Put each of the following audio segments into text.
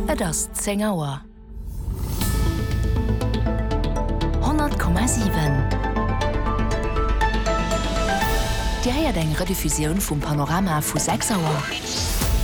Et ass 10 Auer. 100,7 Dir héiert eng Rediffusioun vum Panorama vu 6 Auer.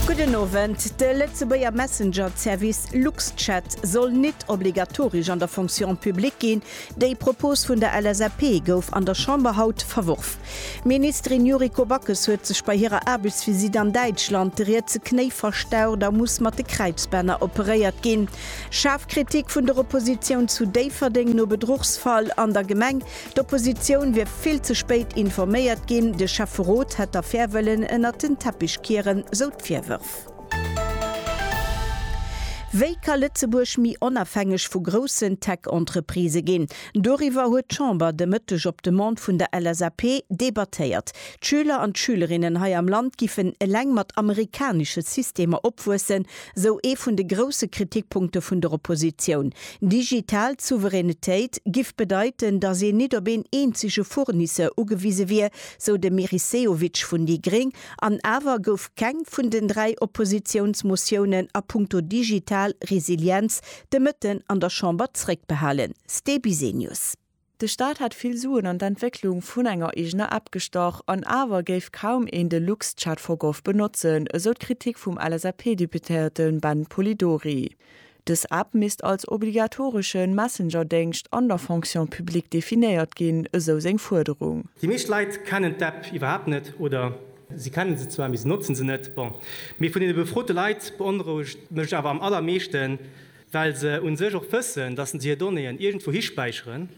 Gudden Owend. De Lëtzebuerger Messenger-Zervice Luxchat soll nit obligatorisch an der Fonction publique ginn. Déi Propos vun der LSAP gouf an der Chamber haut verworf. D'Ministerin Yuriko Backes huet sech bei hirer Aarbechtsvisitt an Däitschland de rietse Knéi verstaucht a muss mat de Kräizbänner operéiert ginn. Schaarf Kritik vun der Oppositioun zu Déifferdeng no Bedruchsfall an der Gemeng, d'Oppositioun wier vill ze spéit informéiert ginn, de Schäfferot hätt d'Affär wëllen ënnert den Teppich kieren, sou d'Virwërf. Wéi ka Lëtzebuerg méi onafhängeg vu groussen Tech-Entreprisë ginn? Doriwwer huet d'Chamber de Mëtteg op Demande vun der LSAP debattéiert. D'Schüler an d'Schülerinnen hei am Land giffen eleng mat amerikanesche Systemer opwuessen, sou ee vun de grousse Kritikpunkte vun der Oppositioun. Digital Souveränitéit giff bedeiten, datt een nit op een eenzege Fournisseur ugewise wier, sou de Meris Sehovic vun déi gréng. An awer gouf keng vun den dräi Oppositiounsmotiounen a punkto digital Resilienz de Mëtten an der Chamber zréckbehalen. Ste Bisenius. De Staat hätt vill Suen an d'Entwécklung vun enger eegener App gestach, an awer géif kaum een de Luxchat for gov benotzen, esou d'Kritik vum LSAP-Deputéierte Ben Polidori. Dës App misst als obligatoresche Messenger-Déngscht an der Fonction publique definéiert ginn, esou seng Fuerderung. Déi meescht Leit kennen d'App iwwerhaapt net oder. Si kennen se zwar, mee se notzen se net. Bon, mee vun deene befrote Leit beonrouegt mech awer am allermeeschten, well se un sech och wëssen, datt se hir Donnéeën iergendwou hispäicheren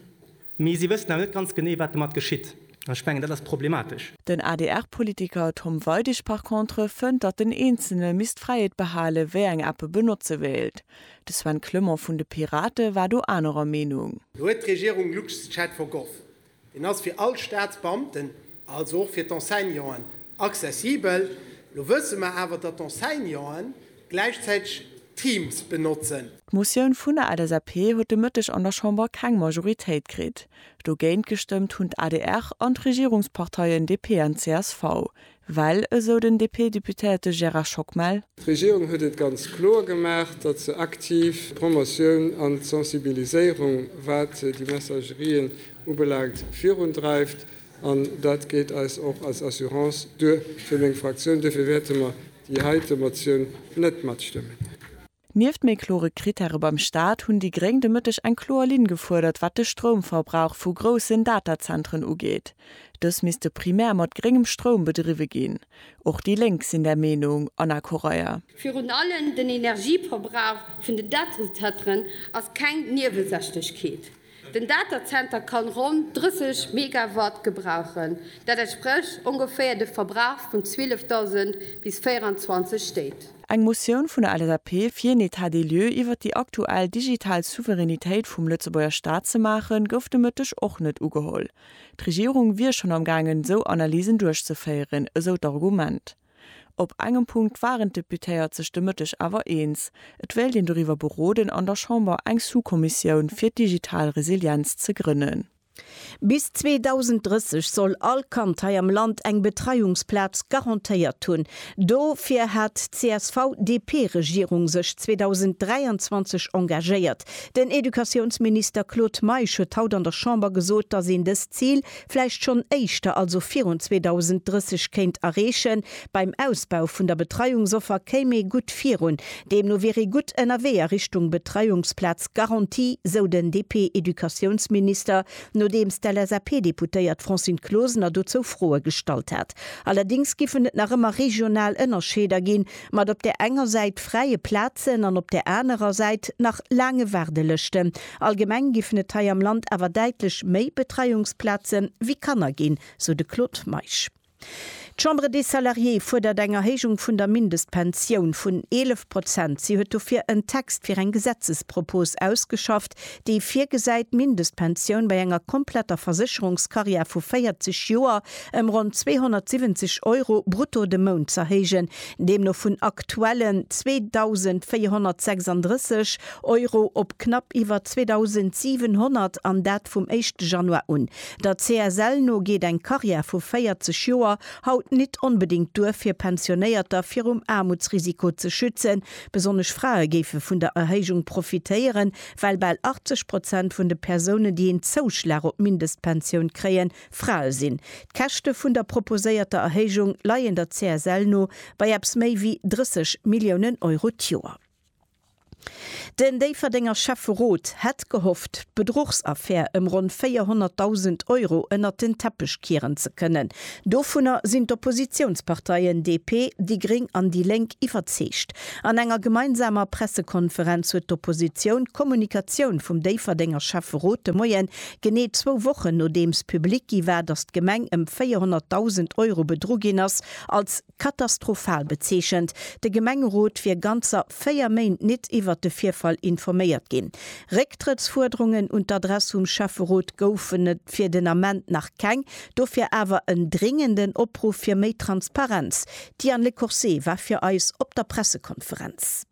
Mee si wëssen awer net ganz genee, wat domat geschitt. An ech mengen, dat ass problematesch. Den ADR-Politiker Tom Weidig par contre fënnt, datt den Eenzele misst d'Fräiheet behale wéi eng App e benotze wéilt. De Sven Clement vun de Pirate war do anerer Meenung. Lo huet d'Regierung LuxChat for Gov. Deen ass fir all Staatsbeamten, also och fir d'Enseignanten accessibel. Lo wësse mer awer, datt d'Enseignanten gläichzäiteg Teams benotze. D'Motioun vun der LSAP huet de Mëtteg an der Chamber keng Majoritéit kritt. Dogéint gestëmmt hunn d'ADR an d'Regierungsparteien DP an csv, well, esou den DP-Deputéierte Gérard Schockmel, D'Regierung huet et ganz kloer gemaach, datt se aktiv d'Promotioun an d'Sensibiliséierung, wat déi Messagerien ubelaangt, virundreift. An dat geet eis och als Assurance duer fir meng Fraktioun. Duerfir wäerte mer déi heite Motioun net matstëmmen. Nieft méi klore Krittäre beim Staat hunn déi Gréng de Mëtteg eng kloer Linn gefuerdert, wat de Stroumverbrauch vu groussen Datazentren ugeet. Dës misste primär mat gréngem Stroum bedriwwe ginn. Och déi Lénk sinn där Meenung, Anna Correia. Virun allem den Energieverbrauch vun den Datazentren ass keng Niewesächlechkeet. Den Datazenter kann ronn 30 Megawatt gebrauchen, dat entsprécht ongeféier de Verbrauch vun 12.000 bis 24 Stéit. Eng Motioun vun der LSAP fir een Etat des lieux iwwert déi aktuell digital Souveränitéit vum Lëtzebuerger Staat ze maachen, gouf de Mëtteg och net ugeholl. D'Regierung wier schonn am gaangen, esou Analysen duerchzeféieren, esou d'Argument. Op engem Punkt waren d'Deputéiert sech de Mëtteg awer eens, Et wéilt een doriwwer beroden, an der Chamber eng Sous-Kommissioun fir d'digital Resilienz ze grënnen. Bis 2030 soll all Kand hei am Land eng Betreiungsplaz garantéiert hunn. Dofir hat d'CSV-DP-Regierung sech 2023 engagéiert. Den Educatiounsminister Claude Meisch huet haut an der Chamber gesot, datt een dëst Zil vläicht schonn éischter, also virun 2030, kéint erreechen. Beim Ausbau vun der Betreiungsoffer kéim ee gutt virun. Deemno wier ee gutt ënnerwee a Richtung Betreiungsplaz garantie, sou den DP-Educatiounsminister, nodeems d'LSAP-Deputéiert Francine Closener dozou Froe gestallt hat. Allerdéngs giffen et nach ëmmer regional Ënnerscheeder ginn, mat op där enger Säit fräie Plazen an op där anerer Säit nach laange Waardelëschten. Allgemeng giffen et hei am Land awer däitlech méi Betreiungsplaze wéi Kanner ginn, sou de Claude Meisch. D'Chambre des Salariés fuerdert eng Erhéijung vun der Mindestpensioun vun 11 Prozent. Si huet dofir en Text fir eng Gesetzespropos ausgeschafft, dee virgesäit, d'Mindestpensioun bei enger kompletter Versécherungskarriär vu 40 Joer ëm ronn 270 Euro brutto de Mount z'erhéijen, deemno vun aktuellen 2.436 Euro op knapp iwwer 2.700, an dat vum éischte Januar un. Der CSL no geet eng Karriär vu 40 Joer haut nit onbedéngt duer, fir Pensionéierter virum Aarmutsrisiko ze schützen. Besonnesch Frae géife vun der Erhéijung profitéieren, well bal 80 Prozent vun de Persounen, déi een Zouschlag op d'Mindestpensioun kréien, Frae sinn. D'Käschte vun der proposéierter Erhéijung leien der CSL no bei eppes méi wéi 30 Milliounen Euro d'Joer. Den Déifferdenger Schäfferot hätt gehofft, d'Bedruchsaffär ëm ronn 400.000 Euro ënnert den Teppech kieren ze kënnen. Dovunner sinn d'Oppositiounsparteien DP, déi Gréng an déi Lénk iwwerzeegt. An enger gemeinsamer Pressekonferenz huet d'Oppositioun d'Kommunikatioun vum Déifferdenger Schäfferot de Moien Genee zwou Wochen nodeems public gi war, datt d'Gemeng ëm 400.000 Euro bedru ginn ass, als katastrophal bezeechent. De Gemengerot wier ganzer véier Méint nit iwwert de Virfall informéiert ginn. Récktrëttsfuerderungen un d'Adress vum Schäfferot goufen et fir den Ament nach keng, dofir awer en dringenden Opruff fir méi Transparenz. D'Diane Lecourcé war fir eis op der Pressekonferenz.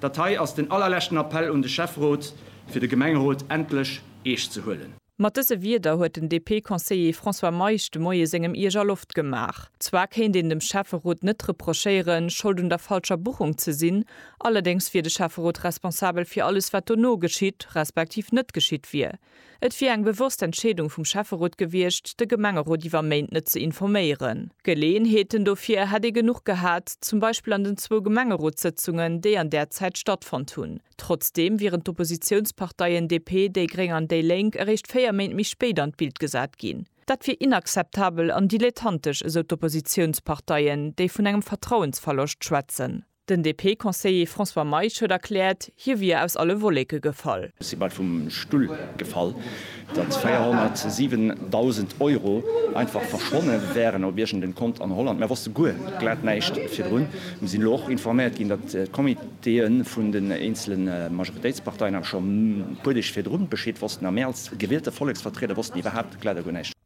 Dat hei ass den allerleschten Appell un de Schäfferot, fir de Gemengerot endlech eescht ze huelen. Mat dëse Wierder huet den DP-Conseiller François Meisch de Moie sengem Iech a Loft gemaach. Zwar kéint een dem Schäfferot net reprochéieren, Schold un der falscher Buchung ze sinn, allerdéngs wier de Schäfferot responsabel fir alles, wat dono geschitt, respektiv net geschitt wier. Et wier eng bewosst Entscheedung vum Schäfferot gewiescht, de Gemengerot iwwer Méint net ze informéieren. Geleeënheeten dofir hätt ee genuch gehat, zum Beispill an den zwou Gemengerotssëtzungen, déi an där Zäit stattfonnt hunn. Trotzdeem wieren d'Oppositiounsparteien DP, déi Gréng an déi Lénk eréischt véier Méint méi spéit an d'Bild gesat ginn. Dat wier inakzeptabel an dilettantesch, esou d'Oppositiounsparteien, déi vun engem Vertrauensverloscht schwätzen. Den DP-Conseiller François Meisch huet erkläert, hie wier aus alle Wolleke gefall. Ech si bal vum Stull gefall, datt 407.000 Euro einfach verschwonne wären op iergend en Kont an Holland. Mär wosste guer glat näischt virdrun. Mir sinn elo och informéiert ginn, datt d'Comitéë vun den eenzele Majoritéitsparteien awer scho e puer Deeg virdru Bescheed wossten a mir als gewielte Volleksvertrieder wossten iwwerhaupt.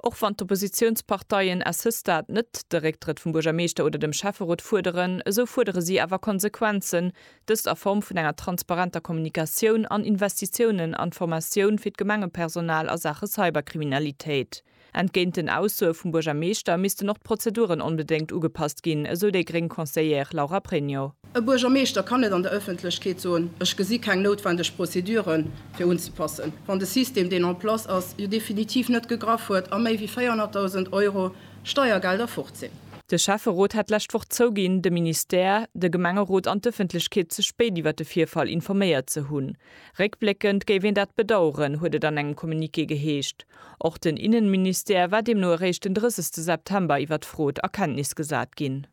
Och wann d'Oppositiounsparteien à ce stade net de Récktrëtt vum Buergermeeschter oder dem Schäfferot fuerderen, esou fuerdere si awer Konsequenzen, dëst a Form vun enger transparenter Kommunikatioun an Investitiounen an d'Formatioun fir d'Gemengepersonal a Saache Cyberkriminalitéit. Entgéint den Aussoe vum Buergermeeschter missten och d'Prozeduren onbedéngt ugepasst ginn, esou déi gréng Conseillère Laura Pregno. E Buergermeeschter kann net an der Ëffentlechkeet soen, Ech gesi keng noutwendeg Prozedure fir unzepassen, wann de System, deen en place ass, jo definitiv net gegraff huet a méi wéi 400.000 Euro Steiergelder fort sinn. De Schäfferot hat d'lescht Woch zouginn, de Ministère, de Gemengerot an d'Ëffentlechkeet ze spéit iwwer de Virfall informéiert ze hunn. Réckbléckend géif een dat bedaueren, huet et an engem Communiqué geheescht. Och den Innenministère war deemno eréischt den 30 September iwwer d'Frot a Kenntnis gesat ginn.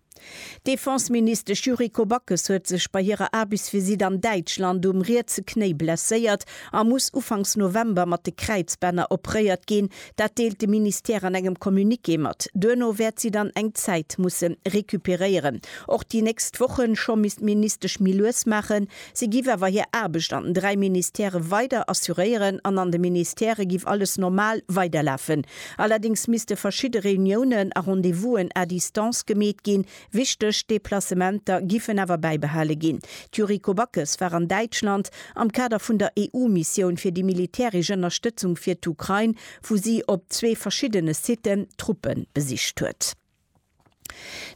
D'Defenseministesch Yuriko Backes huet sech bei hirer Aarbechtsvisitt an Däitschland um rietse Knéi blesséiert a muss ufanks November mat de Kräizbänner operéiert ginn. Dat deelt de Ministère an engem Communiqué mat. Duerno wäert si dann eng Zäit musse recuperéieren. Och déi nächst Woche scho misst d'Ministesch méi lues maachen. Si giff awer hir Aarbecht an den dräi Ministèrë weider assuréieren an an de Ministèrë giff alles normal weiderlafen. Allerdéngs misste verschidde Reuniounen a Rendez-vous'en à distance gemeet ginn. Wichteg Deplacementer giffen awer bäibehale ginn. D'Yuriko Backes war an Däitschland am Kader vun der EU-Missioun fir déi militäresch Ënnerstëtzung fir d'Ukrain, wou si op zwee verschiddene Siten Truppe besicht huet.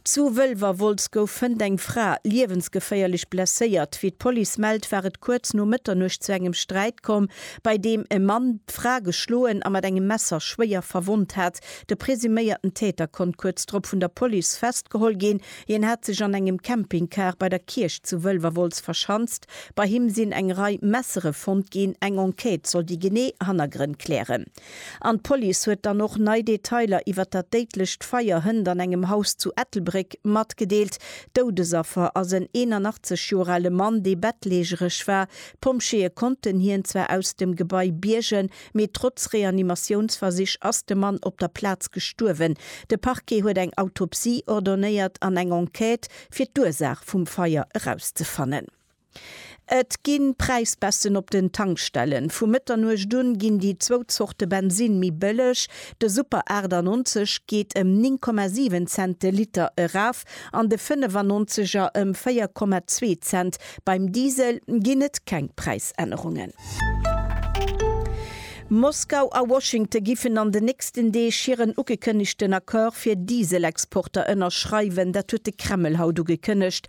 Zu Wëlwerwolz gouf fënnt eng Fra liewensgeféierlech blesséiert. Wéi d'Police mellt, war et kuerz no Mëtternuecht zu engem Sträit komm, bei deem e Mann d'Fra geschloen a mat engem Messer schwéier verwonnt hat. De presuméierten Täter konnt kuerz drop vun der Police festgeholl ginn. Hien hat sech an engem Campingcar bei der Kierch zu Wëlwerwolz verschanzt. Bei him sinn eng Rei Messere fonnt ginn. Eng Enquête soll déi genee Hannergrënn klären. An d'Police huet dann och nei Detailer iwwer dat déidlecht Feier hënt an engem Haus zu Ettelbréck matgedeelt. Doudesaffer ass en 81 Joer ale Mann, dee bettlägereg war. D'Pompjeeë konnten hien zwar aus dem Gebai biergen, mee trotz Reanimatiounsversich ass de Mann op der Plaz gestuerwen. De Parquet huet eng Autopsie ordonéiert an eng Enquête fir d'Ursaach vum Feier erauszefannen. Et ginn Präisbässen op den Tankstellen. Vu Mëtternuecht un ginn déi zwou Zorte Bensin méi bëlleg. De Super 98 geet ëm 9,7 Cent de Liter eraf an de 95 er ëm 4,2 Cent. Beim Diesel ginn et keng Präisännerungen. Moskau a Washington giffen an den nächsten Deeg hiren ugekënnegten Accord fir Diesel-Exporter ënnerschreiwen. Dat huet de Kreml haut ugekënnegt.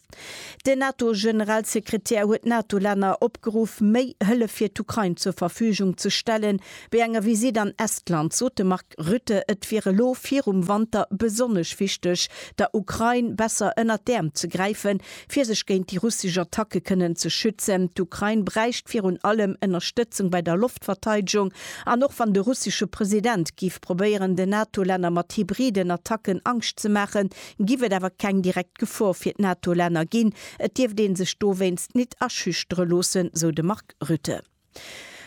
Den NATO-Generalsekretär huet d'NATO-Länner opgeruff, méi Hëllef fir d'Ukrain zur Verfügung ze stellen. Bei enger Visitt an Estland sot de Mark Rutte, et wier elo virum Wanter besonnesch wichteg, der Ukrain besser ënnert d'Äerm ze gräifen, fir sech géint déi russesch Attacke kënnen ze schützen. D'Ukrain bräicht virun allem Ënnerstëtzung bei der Loftverteidegung. An och wann de russesche President géif probéieren, den NATO-Länner mat hybriden Attacken Angscht ze maachen, géif et awer keng direkt D'Gefor fir d'NATO-Länner ginn, et dierft ee sech dowéinst nit aschüchtere loossen, sou de Mark Rutte.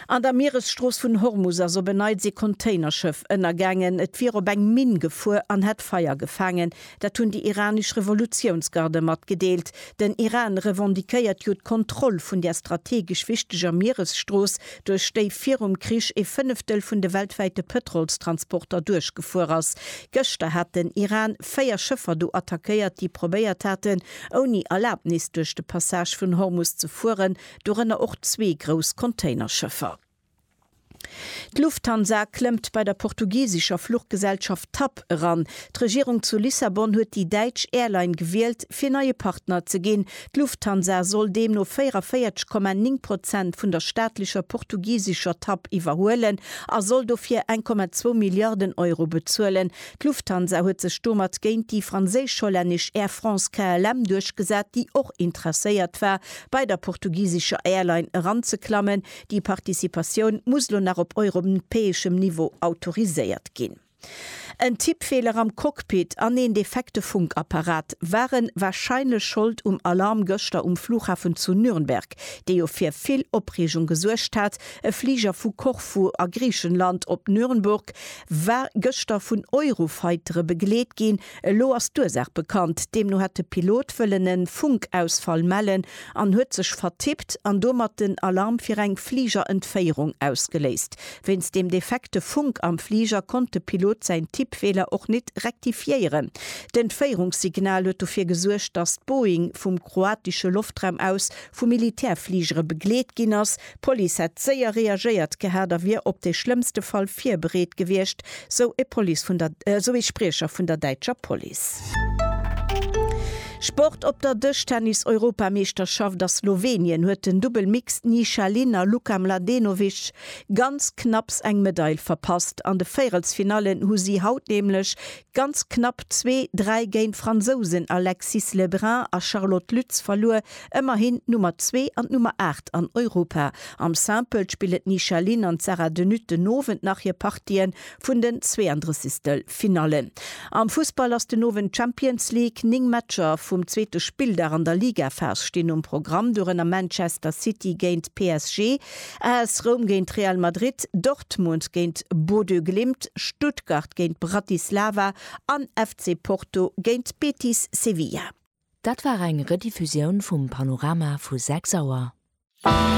An der Mieresstrooss vun Hormus ass op en Neits ee Containerschëff ënnergaangen. Et wier op eng Minn gefuer an hätt Feier gefaangen. Dat hunn déi iranesch Revolutiounsgarde matgedeelt. Den Iran revendiquéiert jo d'Kontroll vun där strategesch wichteger Mieresstrooss, duerch déi virum Krich ee Fënneftel vun de weltwäite Pëtrolstransporter duerchgefuer ass. Gëschter hat den Iran véier Schëffer do attackéiert, déi probéiert haten, ouni Erlabnis duerch de Passage vun Hormus ze fueren, dorënner och zwee grouss Containerschëffer. D'Lufthansa klëmmt bei der portugisescher Fluchgesellschaft TAP eran. D'Regierung zu Lissabon huet déi däitsch Airline gewielt, fir neie Partner ze ginn. D'Lufthansa soll deemno 44,9 Prozent vun der staatlecher portugisescher TAP iwwerhuelen a soll dofir 1,2 Milliarden Euro bezuelen. D'Lufthansa huet sech domat géint déi franséisch-hollännesch Air France KLM duerchgesat, déi och interesséiert war, bei der portugisescher Airline eranzeklammen. Déi Participatioun muss elo nach op europäeschem Niveau autoriséiert ginn. En Tippfeeler am Cockpit an een defekte Funkapparat ware warscheinlech Schold um Alarm gëschter um Flughafen zu Nürnberg, dee jo fir vill Opreegung gesuergt hat. E Fliger vu Korfu a Griichenland op Nürnburg war gëschter vun Eurofightere begleet ginn. Elo ass d'Ursaach bekannt. Deemno hätt de Pilot wëllen e Funkausfall mellen an huet sech vertippt an domat den Alarm fir eng Fligerentféierung ausgeléist. Wéinst dem defekte Funk am Fliger konnt de Pilot säin Tippfeeler och net rektifiéieren. D'Entféierungssignal huet dofir gesuergt, datt d'Boeing vum kroatesche Loftraum aus vu Militärfligere begleet ginn ass, D'Police hätt séier reagéiert gehat a wier op dee schlëmmste Fall virbereet gewiescht, sou ee Police vun der, sou ee Spriecher vun der däitscher Police. Sport Op der Dëschtennis-Europameeschterschaft a Slowenien huet den Dubbel Mixed Nisha Lin a Luka Mladenovic ganz knapps eng Medail verpasst. An de Véierelsfinallen hu si haut nämlech ganz knapp zwee, dräi géint d'Fransousen Alexis Le Brun a Charlotte Lütz verluer, ëmmerhin d'Nummer zwee an d'Nummer aacht an Europa. Am Simple spille d'Nisha Lin an d'Sarah De Nutte den Owend nach hir Partië vun den Zwee-an-Drëssigstel Finallen. Am Fussball ass den Owend d'Champions League, néng Matcher vum zweete Spilldag an der Ligaphas stinn um Programm, dorënner Manchester City géint PSG, AS Roum géint Real Madrid, Dortmund géint Bodø Glimt, Stuttgart géint Bratislava an FC Porto géint Betis Sevilla. Dat war eng Rediffusioun vum Panorama vu 6 Auer.